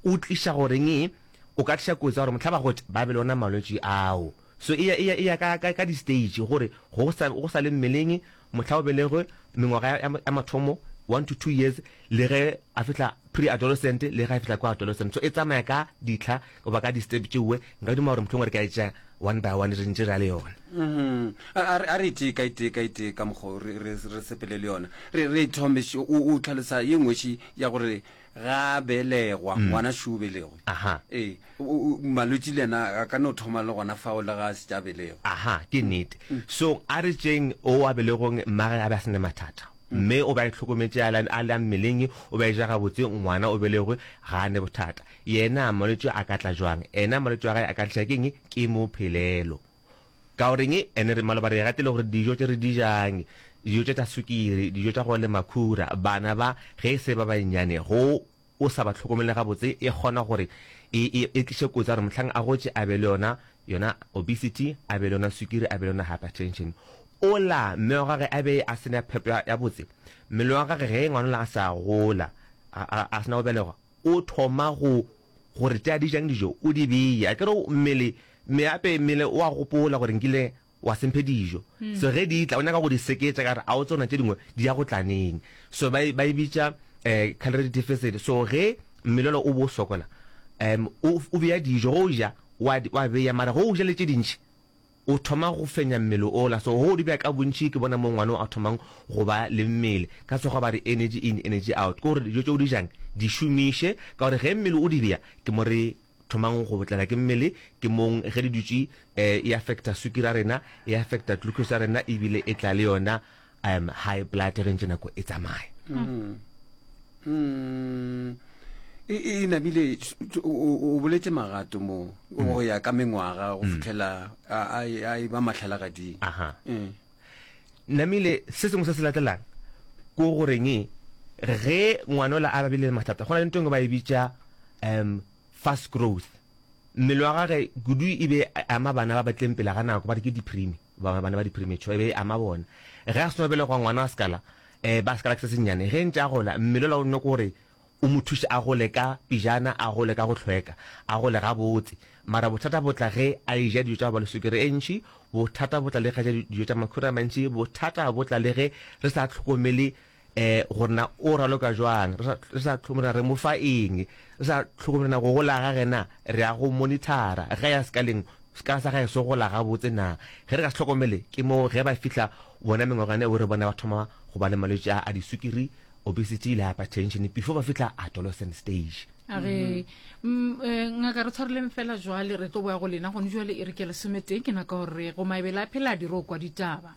O tliša goreng? O ka tliša kotsi ya gore mohlaba go tša ba be le ona malwetši ao. So e ya, e ya, e ya ka, ka, ka di-stage gore go sa, go sa le mmeleng, mohla o belegwe, mengwaga ya, ya, ya mathomo, one to two years, le ge a fihla pre-adolescent, le ge a fihla ko adolescent. So e tsamaya ka ditlha goba ka di-step tšeoe. Nka duma gore mohlomongwe re ka e tšea one by one, re ntše re ya le yona. Uhum. A, a re, a re e tee ka e tee ka e tee ka mokgo re, re, re sepele le yona. Re, re e thome š, o, o tlhalosa ye nngwetši ya gore ga belegwa ngwana šu belegwe ee malwetši le yena a ka no thoma le gona fao le ga a se tša belegwa aha ke nnete so a re tšeng o a belegong mmage a be a sene mathata mme o ba e tlhokometše a la mmeleng o ba e ja gabotse ngwana o belegwe ga a ne bothata yena malwetši a ka tla jwang ena malwetši a gae a ka tliša keng ke mo phelelo Ka o reng? Ene re maloba re gatile gore dijo tše re di jang, dijo tše tša sukiri, dijo tša go le makhura, bana ba, ge e se ba bannyane, go o sa ba tlhokomele gabotse, e kgona gore e, e, e tliše kotsi ya gore mohlang a gotše a be le yona, yona obesity, a be le yona sukiri, a be le yona hypertension. Ola, mme wa gage a be a se na phepo ya, ya botse. Mmele wa gage ge ngwanola a sa gola, a, a, a se na go belegwa, o thoma go gore tša di jang dijo o di beye a kere mmele meape mmele o a gopola gore nkile wa semphe dijo hmm. so ge di tla o nyaka go di seketša ka gore a o tsona tše dingwe di ya go tlaneng so ba e bitša um calorie deficit so ge mmelelo o bo sokola um o beya dijo go ja wa beya mara go ja le tše dintšhi o thoma go fenya mmele ola. So go di bea ka bontši ke bona mo ngwano a thomang go ba le mmele. Ka Sekgowa ba re energy in, energy out. Ke gore dijo tše o di jang di šomiše ka gore ge mmele o di bea ke mo re thomang go tlala ke mmele, ke mong ge di dutše e affecta sukiri ya rena, e affecta glucose ya rena ebile e tla le yona um high blood re ntse nako e tsamaya mm. Mm. e, e namile o boletse magato mo mm. go ya ka mengwaga go mm. fitlhela a e ba matlhalagading aha mm. namile se sengwe se se latelang ko goreng e, ge ngwana o la a babile mathata go na le ntong ba e bitša um fast growth mmele wa gage kudu e be ama bana ba batleng pele ga nako ba re ke diprime ba bana ba di-premature e be e ama bona ge a seno belegwa ngwana wa sekala um ba sekala ke se sennyane ge ntse a gola mmele ola o nne kore o mo thuše a gole ka pijana a gole ka go tlhweka a gole gabotse mara bothata botla ge a e ja dijo tsa go ba le sukere e ntšhi bothata botla le ge a ja dijo tsa makhura a mantšhi bothata botla le ge re sa tlhokomele um gore na o raloka jwang re sa re sa tlhokomela re mo fa eng re sa tlhokomela na go gola ga gena re ya go monithara ge ya sekaleng sekala sa gae se gola gabotse na ge re ka se tlhokomele ke mo ge ba fitlha bona mengwagane o re bona ba thoma go ba le malwetse a disukiri obesity le hypertension before ba fitlha adolescent stage a re mm, eh, ngaka re tshwareleng fela jwale re tlo boya go lena gone jwale e re ke lesometee ke naka gore go mabele a phela a dire o kwa ditaba